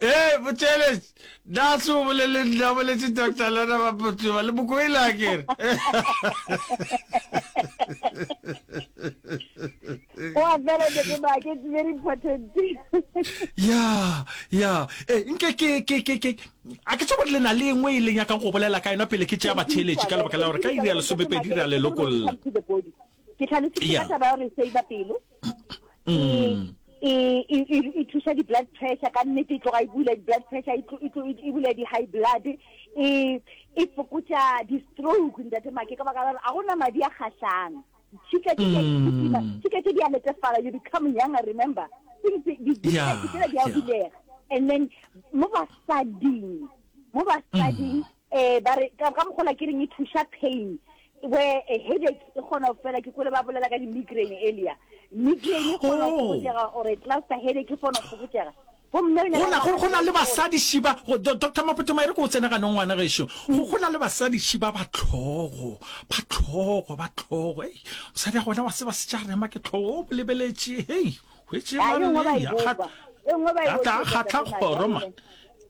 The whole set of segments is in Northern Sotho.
Hei, Botšeletš, na se o bolele nna, o boletše Doctor Lona Bapotuba, le mokoile a kere. Oa fela ke tseba ke it's very important. Ya, ya. Eh, nke ke ke ke ke a ke tsebo le na le engwe e leng ya ka go bolela ka yona pele ke tšea batšheletši ka lebaka la gore ka iri ya lesomepedi ra le lokolla. ke tlhalositse ka taba ya gore save pelo mm. e, e, e, e thusa di-blood pressure ka nnete e tloga e bula di-blood pressure e bula di-high blood e fokotsa di-stroke ntate make ka baka la gore a gona madi a kgatlhang tshika tse mm. di a letefala you become younger remember ditsela di a bulega and then mo basading mo basading mm. Eh, ba re, ka, ka mogola ke reng e thuša pain. Where a headache e kgona go fela, ke kwele ba bolela ka di-migraine earlier. Migraine e kgona go Oh. fokotšega, or a cluster headache e kgona go fokotšega. Gomme re ne go ra na go go na le nagana- basadi šiba go- Do- doctor mapotoma e re ko o tsene ganong ngwana gešo go go na le basadi šiba ba tlhogo ba tlhogo ba tlhogo ei mosadi a gona wa tseba se tša rema ke tlhogo o bolebeletše hei hwetse Ah, e nngwe ba e bopa. E nngwe ba e a tla bopa, kgatla doctor Thomas, kgoro ya man lona.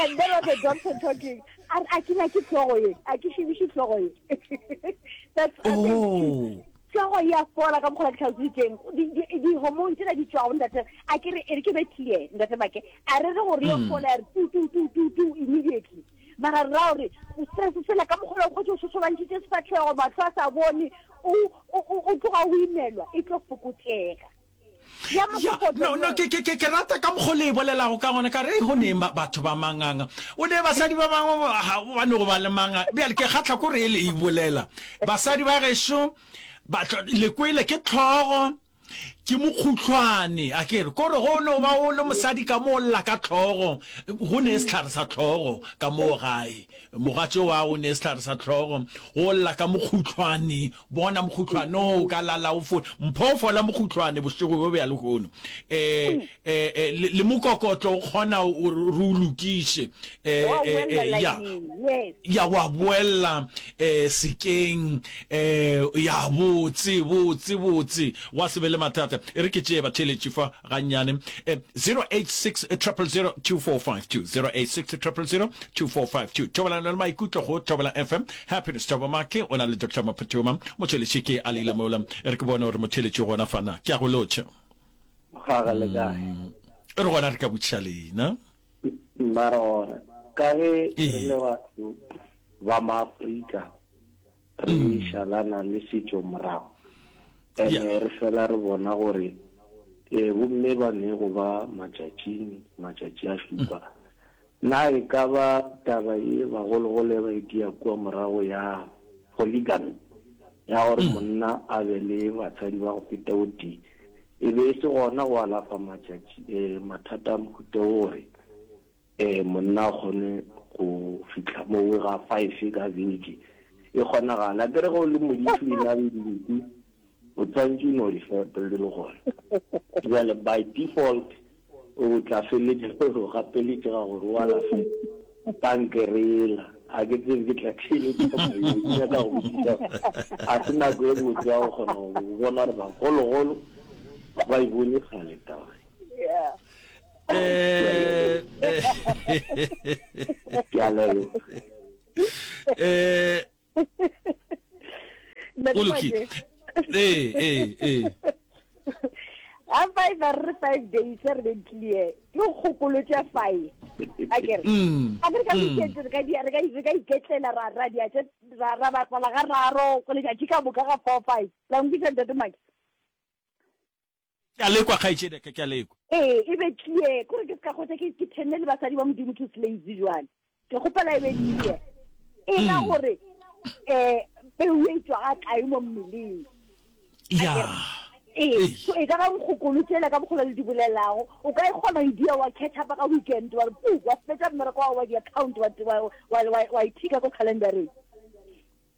and there was a doctor talking a a ke ke tlogo ye a ke shibishi tlogo ye that's a oh. tlogo ya fola ka mokgola ke tlhausitseng di-hormone tsena di tswago ntate a ke re ere ke be clear ntate make a re re gore yo hmm. fola ya re tu tu tu tu tu immediately mara ra gore stress sela ka mokgola o kgotse o sosobantšitse sefatlhego matlho a sa bone o tloga o imelwa e tlo fokotsega Ya mo Ya, kopotso no, no, ye. ke, ke, ke, ke rata ka mokgwa o le e bolelago ka gona ka re "Ei, go neng ba, batho ba manganga o ne basadi ba bangwe ba- ga ba no go ba le manga bjale ke kgatlha ko re e le e bolela basadi ba gešo ba tlo- le kwele ke tlhogo ke mokhutlhwane a ke re ko re go no ba o le mosadi ka mo o lla ka tlhogo go ne e sehlare sa tlhogo ka moo gae mogatšo wa o ne e sehlare sa tlhogo go lla ka mokhutlhwane Bona mokhutlwane o ka lala o fo mpho fola mokhutlwane bošego bjo bja lehono eh eh eh, le, le mokokotlo o kgona o re o lokiše eh Wa eh boela eh, ya laineng, yes. ya wa boella eh sekeng eh ya botse botse botse wa se be le mathata e re ke tšee batheletši fa gannyane um 0860002452 thobalano le maikutlo go thobela fm happiness thobo make o na le dr maphuthuma motheletše ke a leile mola re ke bone gore motheletše gona fana ke a go lotšha mm. re gona re ka botšha lena mara gona ka ge re le batho ba maaforika re šalana le setšo morago ene re fela re bona gore e bomme ba ne go ba matšatšing matšatši a šupa na e ka ba taba e bagologolo e ba e dia kua morago ya polygamy ya gore monna a be le batsadi ba go feta o tee e be e se gona go alafa matšatši mathata a mohuta o gore Ee, monna a kgone go fihla mowe ga five ka beke. E kgonagala. Ke re ge o le modithu e na le dinku, o tshwanetse o no di fepa le gona. Jale by default o tla feletša o re o gapeletše ga gore o alafe kankere yela. Ga ke tsebe ke tla theeletša moyeng. Ke nyaka go botšiša ga se nako e botse ya go kgona go bona gore bagologolo ga ba e bone kgale taba ye. eh, eh. eh o lokile ee ee ee a five a re five days re be clear ke kgokolo tša five a kere mm. a re ka mm. iketse re ka di re ka re ka iketlela ra ra di atse ra ra ba tsala ga raro go le tšatši ka boka ga four five la nkisa ntate maki Ke a lekwa, kgaetšedi ya ka, ke a lekwa. Ee, e be tlie. Ke gore ke se ka hwetša ke, ke thenne le basadi ba Modimo two slaves bjale. Ke kgopela e be tlie. E ra gore, um peu ye e tšwa ga kae mo mmeleng? Yaa. Ee, so e ka ba nkgokolo tšela ka mokgwa le di bolelago, o ka e kgona go e dia, wa catch up-a ka weekend, wa re puu, wa fetša mmereko wa gago wa di-account, wa, wa, wa, wa, wa, wa e tick-a ko calendar-eng.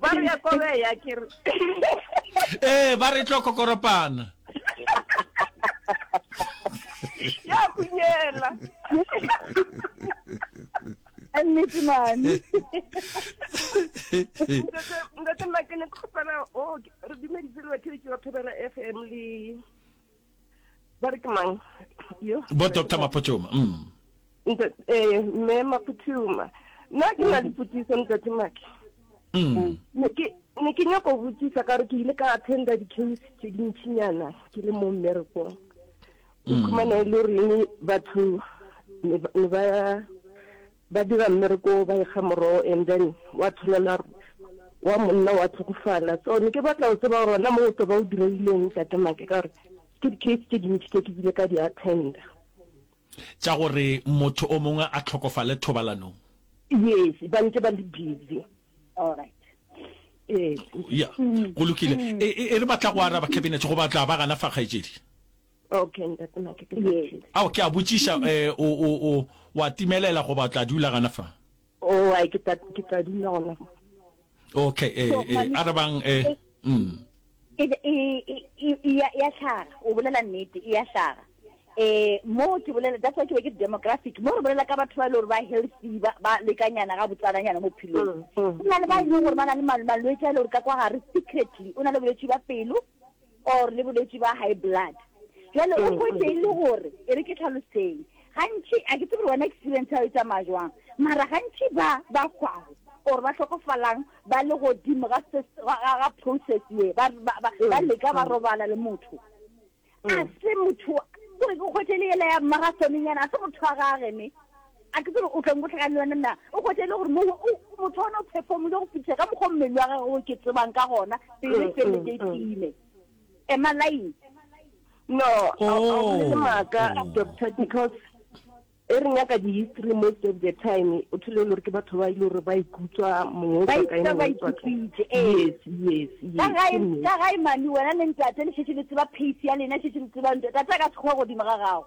ba re ya kobe ya ke re ee ba re tlo kokoropana ya kunyela nnete mane ntate nna ke ne ke kgopela o oh, re dumeditse le batheletši ba phebela f m le ba re ke mang bo doctor mapotšoma mm. eh, mme mapotšoma nna ke na dipotšiso ntate maki mm. ne ke nyako go botsisa ka gore ke ile ka attenda di-case tse dintšhinyana ke le mo mmerekong ke mm. khumana e le gore batho ne ba Ba dira mmereko wo ba ekga morogo and then wa tshwanela wa monna wa tlhokofala so ne ke batla go tseba gore wena mo o tlo ba o direileng tate make ka gore ke di-case tse dintši tse ke bile ka di attenda tša gore motho o mongwe a tlhokofale thobalanong yes ba ntse ba le busy alright ya go lokile e re batla go araba cabinet go batla ba gana fa kgaetšedi Okay, ntate Make, ke Yes. fihlile. Ao, ke a botšiša, eh, o, o, o, o a timelela goba o tla dula gana fa? Oh, ai, ke tla, ke tla dula gona fa. Okay, eh, So, eh, mami- arabang, eh, eh, mm. e e e e- e ya ya hlaga o bolela nnete e ya hlaga eh mo ke bolela that's why ke be ke demographic mo re bolela ka batho ba e le gore ba healthy ba ba lekanyana ga botsalanyana mo phelong Mm, mm. o na le ba e leng gore ba na le mal- malwetse a e le gore ka kwa gare secretly o na le bolwetse ba pelo or le bolwetši ba high blood jale o hwetše e le gore e re ke tlhaloseng gantši a ke tsebe wena experience ya o e tsamaya jwang mara gantši ba ba hwago or ba hlokofalang ba le godimo ga process ye ba leka ba robala le motho a se motho kore ke kgwetše le yela ya marathoneng yana a se motho wa gage ne A ke tsebe o tla nkotlhaka le yona na? O hwetša e le gore mowa o motho ona o phefomile go fetiša ka mokgwa o mmele wa gagwe o ke tsebang ka gona pele e feleletse e tiile. Am I lying? No, a o bolele maaka, doctor, because e re nyaka di-history most of the time o thole e le gore ke batho ba e le gore ba ikutswa mongwe o tswa kae, mongwe o tswa kae. Yes, yes, yes. Ka gae, ka gae mane wena le ntate le šetše le tseba pace ya lena, šetše le tseba ntate a ka sekgowa godimo ga gago.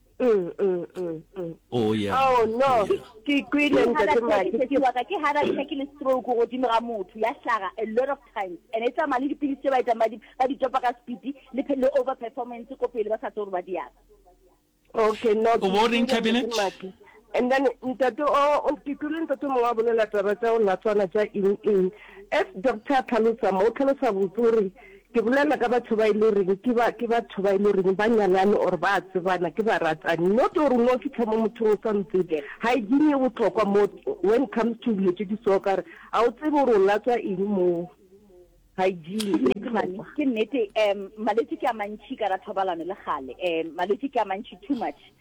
Mm, mm, mm, mm. Oh, yeah. Oh, no. Oh, yeah. Ke ikwile ntate Maki. Ke wa ka ke heart attack le stroke go dimo ga motho ya hlaga a lot of times. And it's a mali dipilisi ba ita madi ba di topa ka speed le le over performance ko pele ba sa tsoro ba di ya. Okay, no. O bo reng cabinet? And then ntate o o ke kwile ntate mongwe a bolela taba tša go latswana tša eng eng. As doctor a tlhalosa mo, o tlhalosa botse o re ke bolela ka batho ba e le goreng ke ba ke batho ba e le goreng ba nyalane or ba tsebana ke baratani. Not gore o no fitlha mo mothong o sa mo tsebe. Hygiene e bohlokwa mo when comes to dilo tše di so ka gore ga o tsebe gore o latswa eng mo. Hygiene e bohlokwa. Ke nnete um malwetši ke a mantšhi ka ra thobalano le kgale um malwetši ke a mantšhi too much.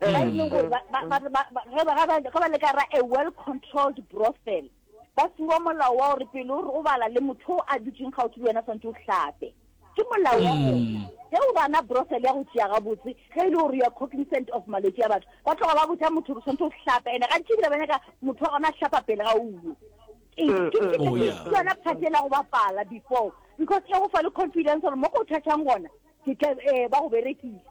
ba e leng gore ba- ba- ba- ba- ba- ge ba- ge ba- ge ba le ka ra a well controlled brothel ba fiwa molao wa gore pele o re o bala le motho o a dutseng gaufi le wena tshwanetse o hlape ke molao wa gona ge o bana brothel ya go tšea gabotse ge e le gore ya cognizant of malwetse a batho ba tloga ba botsa motho gore tshwanetse o hlape ene ga tšebile ba nyaka motho wa gona a hlapa pele ga uwe Ee, ke- ke- ke- Oh, ke- yeah. ke yona part ela go bapala before because e go fa le confidence gore mo ko o thathang gona ke tla eh, ba go berekisa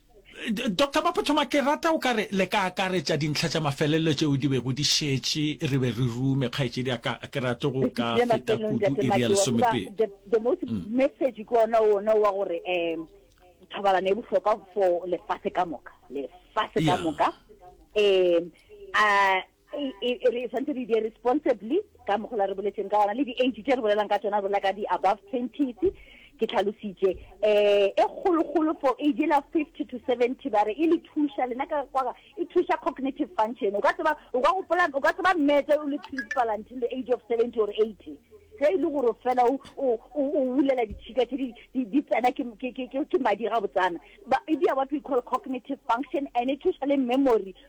Doctor Mapothoma, ke rata o ka re le ka akaretša dintlha tša mafelelo tšeo di bego di šetše re be re rume, kgaetšedi ya ka, ke rate go ka feta kudu iri ya lesomepedi. The, the most mm. message ke ona ona wa gore um thobalano e bohlokwa for lefatshe ka moka lefatshe ka moka um a re tshwanetse re die responsibly ka mogola re boletseng ka gona le di-age tse re bolelang ka tsona bolela ka di-above twenties ke tlhalositše um e kgologolo for age la fifty to seventy ba re e le thuša lena ka kwa e thuša cognitive function o ka tseba o ka gopola o ka tseba mmetse o le principal until the age of seventy or eighty ge e le gore fela o wulela ditšhika tse di tsena ke madi ga botsana e dia what we call cognitive function and e thuša le memory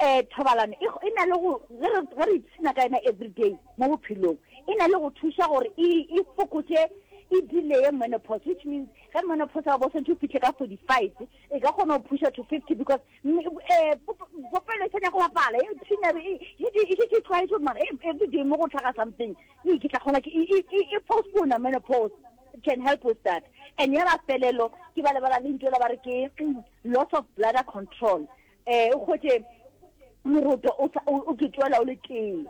Ee, thobalano e, e na le go, ge re, ge re ipshina ka yona everyday mo bophelong, e na le go thuša gore e, e fokotše, e delay-e menopause, which means ge menopause ya go bo swantšhe o fihle ka 45, e ka kgona go phusha to 50 because mm, eh, pop, popelo e sa nyaka go bapala, e phina, e, e šetše, e šetše e tlwaetše gore mara e- everyday mo go tlhaga something, ee, ke tla kgona ke, e, e, e, e postpone menopause. It can help with that. And ya mafelelo, ke ba lebala lentšu la ba re ke loss of bladder control. Ee, o hwetše moroto o sa- o- o ke tšwela o le tee.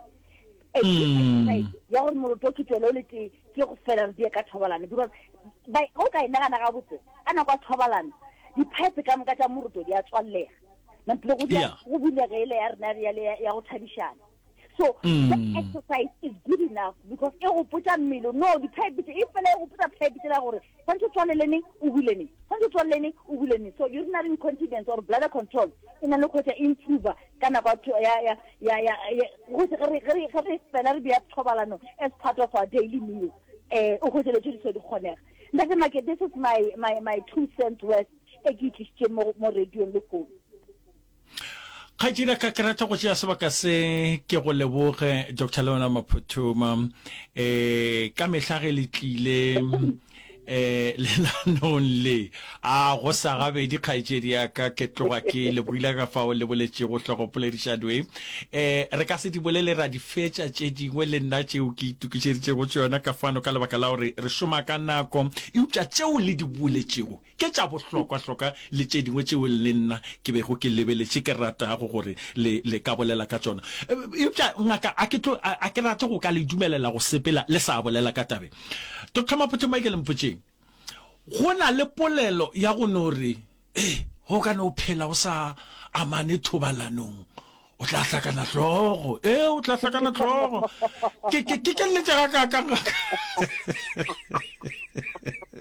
Eh, ke exercise ya gore moroto o ke tšwela o le tee ke go fela re die ka thobalano because ba- o ka e nagana gabotse ka nako ya thobalano diphaepe ka moka tša moroto di a tswallega mantlo go dia- Yeah. go bulegele ya rena ya le- ya go thabišana so mm. that exercise is good enough because e go potsa mmele no diphebite e fela e go potsa phebite la gore tshwanetse o tswalele neng o bule neng tshwanetse o tswalele neng o bule neng so urinary incontinence or bladder control e na le kgotsa improver ka nako ge re fela re beya thobalano as part of our daily meal um eh, o kgotse le tse di se di kgonega ntate make this is my, my, my two cents worth e ke itlisitseng mo radiong le founu Kgaetšedi a ka ke rata go tšea sebaka se ke go leboge Dr. Leona Maphothoma e ka mehla ge le tlile e lelanong le a go sa gabedi kgaetšedi ya ka ke tloga ke le buile ka fao le boletšego hlogopoledišano e e re ka se di bolele ra di fetša tše dingwe le nna tšeo ke itukišeditšego tšona ka fano ka lebaka la gore re šoma ka nako eupša tšeo le di boletšego Ke tša bohlokwa-hlokwa le tše dingwe tšeo le nna ke bego ke lebeletše ke ratago gore le, le ka bolela ka tšona. Eupša, ngaka, a ke tlo, a, a ke rate go ka le dumelela go sepela le sa bolela ka taba ye. Doctor, potšong ba e ke le mpotšeng. Go na le polelo ya go no re, Ee, go ka no phela o sa amane thobalanong o tla hlakana hlogo e o tla hlakana hlogo ke ke ke keletse ga ka ka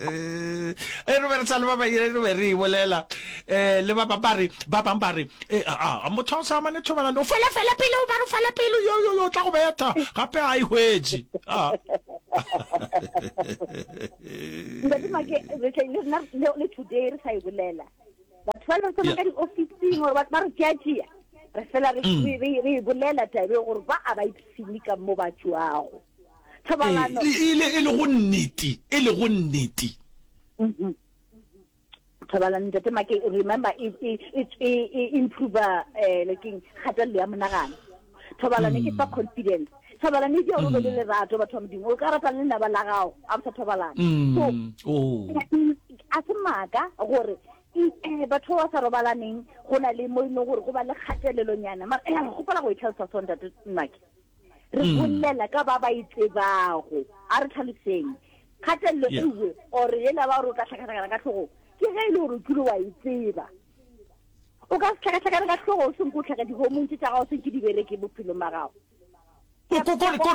eh, e re be re sa le ba ba ire re be re ibolela eh le ba ba ba re ba bang ba re eh, a motho o sa mane thobana o fela fela pele o ba re fela pele yo yo yo tla go betha gape a ihwetše a ntate make re tla le today re sa ibolela batho ba leng sona ka diofising gore ba re tšeatšea re fela re mm. e bolela tabe gore ba a ba ipsene ka mo ba tšwago thobalano e, e le go nnete e le go nnete mm-hmm. thobalano ntate make remember e, e, e improve um lekeng kgatelelo ya monagano Thobalano ke fa mm. confidence. Thobalano e dia gore le mm. lerato batho ba modimo. O ka rata le laba la gago a bo sa thobalana. Mm. So oh. a se maaka gore eh, batho ba sa robalaneng go na le mo e leng gore go ba le kgatelelonyana mara eh, gopola go e tlhalosa sontate mmake re bolela ka ba ba e tsebago a re tlhaloseng kgatelelo ewe or ela ba gore o ka tlhakatlhakana ka tlhogo ke ge e le gore o kile wa e tseba o ka se hlakahlakane ka hlogo o senko o tlhage dihomong tše tša gago senke di bereke bophelong ba gago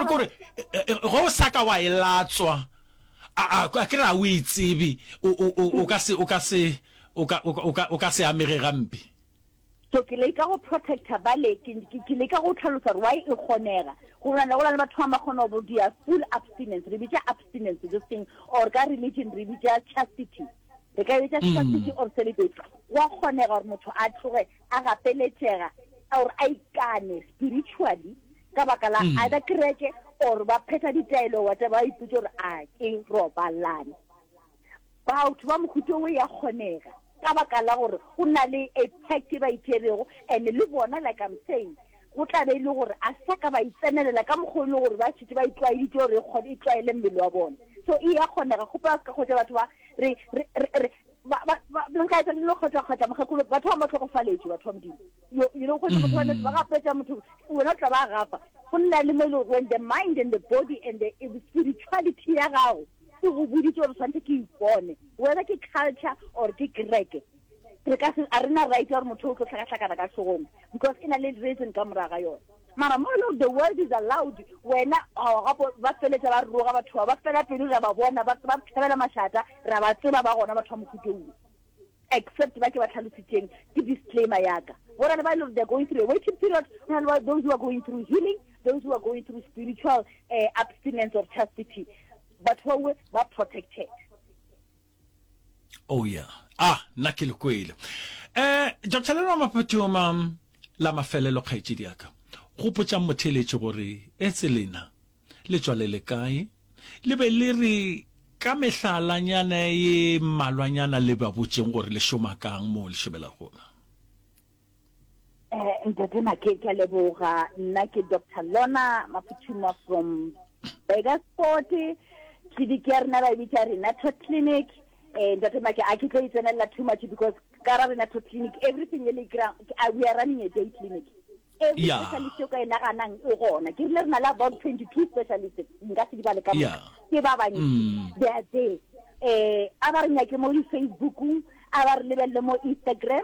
kore ge o sa ka wa e latswa a ke re a o e tsebe o ka se o ka se o ka o ka o ka se amege gampe so ke le ka go protector bale ke ke le ka go tlhalosa re why e kgonega go bona le go le batho ba ma kgona go dia full abstinence re bitsa abstinence this thing or ka religion re bitsa chastity re ka etsa strategy mm. or celibacy wa kgonega gore motho a tloge a gapeletšega or a ikane spiritually ka baka la mm. either kereke or ba phetha ditaelo wate ba iputse gore a ke robalane batho ba mohuto o ya kgonega ka baka la gore o na le a pact e ba itšerego and le bona like i'm saying Go tla be e le gore a sa ka ba e tsenelela ka mokgwa o e le gore ba šetše ba e tlwaeditše gore e kgone e tlwaele mmele wa bona. So e ya kgonega, go ba ka kgotša batho ba re, re, re, re, ba, ba, ba, ba nka etsa dilo kgotša, kgotša mokgekolo, batho ba mo hlokofaletše, batho ba Modimo. You, you know, kgotša motho wa nete, ba gapetša motho, wena o tla ba gafa. Go nna le mo e le gore when the mind and the body and the spirituality ya gago e go boditše gore swanetse ke ipone, whether ke culture or ke kereke, re ka se a re na right ya gore motho o tlo hlakahlakana ka hlogong because e na le reason ka morago ga yone mara mo e le gore the world is allowed wena gapo ba feletsa ba roga batho ba ba fela pelo ra ba bona ba ba thabela mašata ra ba tseba ba gona batho ba mokhutou except ba ke ba tlhalositseng ke disclaimer yaka go na le ba e le gore they're going through a waiting period go na le ba those who are going through healing those who are going through spiritual uh, abstinence or chastity batho bawe ba protected Oh yeah. Ah, nna ke le kwele. Eh, Doctor Leno Mapatoma, la mafelelo kgaetšedi yaka. Gopotšang motheeletši gore etse lena le tšwa le le kae? Le be le re ka mehlalanyana ye mmalwanyana le ba botšeng gore le šoma kang moo le šomela gona. Eh, ntate make ke a leboga nna ke dr lona maphuthuma from bakersport clinic ya rena ba e bitsa renato clinic um ntate make a ke tlo itsenelela too much because ka ra renato clinic everything e le kry-ang we are running a day clinic every Yeah. specialist o ka e naganang e gona ke rile re na le about twenty two specialist nka se di bale ka Yeah. moka ke ba bantsi Mm. they are there um a ba re nyake mo di-facebookong a ba re lebelele mo instagram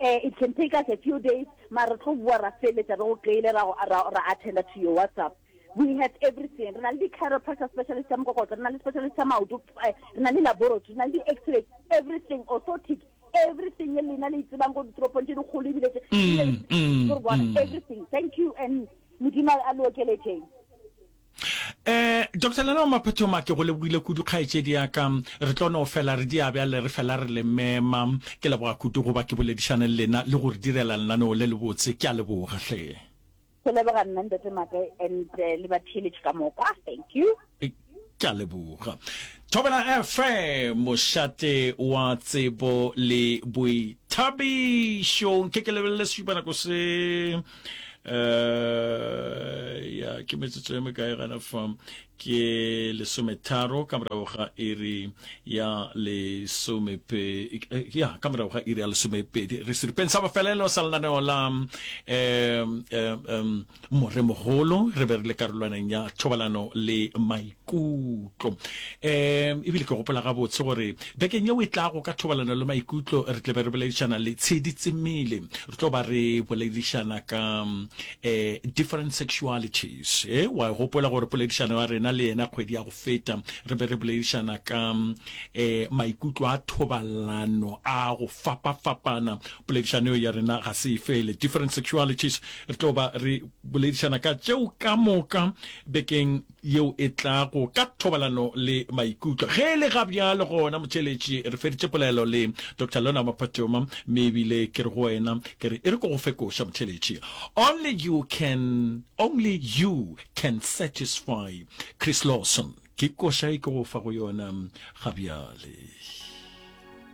Eh, it can take us a few days, mara re tlo boa ra feletša re go kry-ile ra go- ra- ra attenda to your WhatsApp. We have everything. Re na le di-chiropractor specialist tša mokokotlo, re na le specialist tša maoto, eh, re na le laboratory, re na le di-x-ray, everything, orthotic, everything ye lena le e tsebang ko ditoropong tše dikgolo ebile tše- Mm, mm, Ke re bona, mm. everything. Thank you and Modimo a le okeletšeng. Eh, Doctor Lena wa Maphethoma, ke go lebogile kudu kgaetšedi ya ka. Re tlo no fela re dia bjale re fela re le mema. Ke leboga kudu go ba ke boledišane le lena le go re direla lenaneo le lebotse. Ke a leboga hle. Ke leboga nna Ntate Maaka and le batheeletši ka moka. Thank you. Ke a leboga. Thobela FM, mošate wa tsebo le boithabišo. Nke ke lebelele sešupanako se. uh, ya ke metsotso ya mekae gana fa ke lesometharo ka morago ga iri ya lesomepedi eh, ya ka morago ga iri ya lesomepedi re seripeng sa bofelelo sa lenaneo la um, um, more mogolo re be re le karolwaneng ya thobalano le maikutlo um ebile ke gopola gabotse gore bekeng ye o e tlago ka thobalano le maikutlo re tle be re boledišana le tshedi tsemele re tlo ba re boledišana ka um different sexualities e wa gopola gore poledišano ya rena le yena kgwedi ya go feta re be re boledišana ka um maikutlo a thobalano a go fapafapana poledišano ya rena ga se e fele different sexualities re tlo ba re boledišana ka tšeo ka moka bekeng yeo e tlago ka thobalano le maikutlo. Ge e le ga bjalo gona, motheeletši, re feditše polelo le Doctor Lorna Maphatoma, mme ebile ke re go wena, ke re e re ko go fe koša, motheeletši. Only you can, only you can satisfy Chris Lawson. Ke koša e ke go fa go yona ga bjale.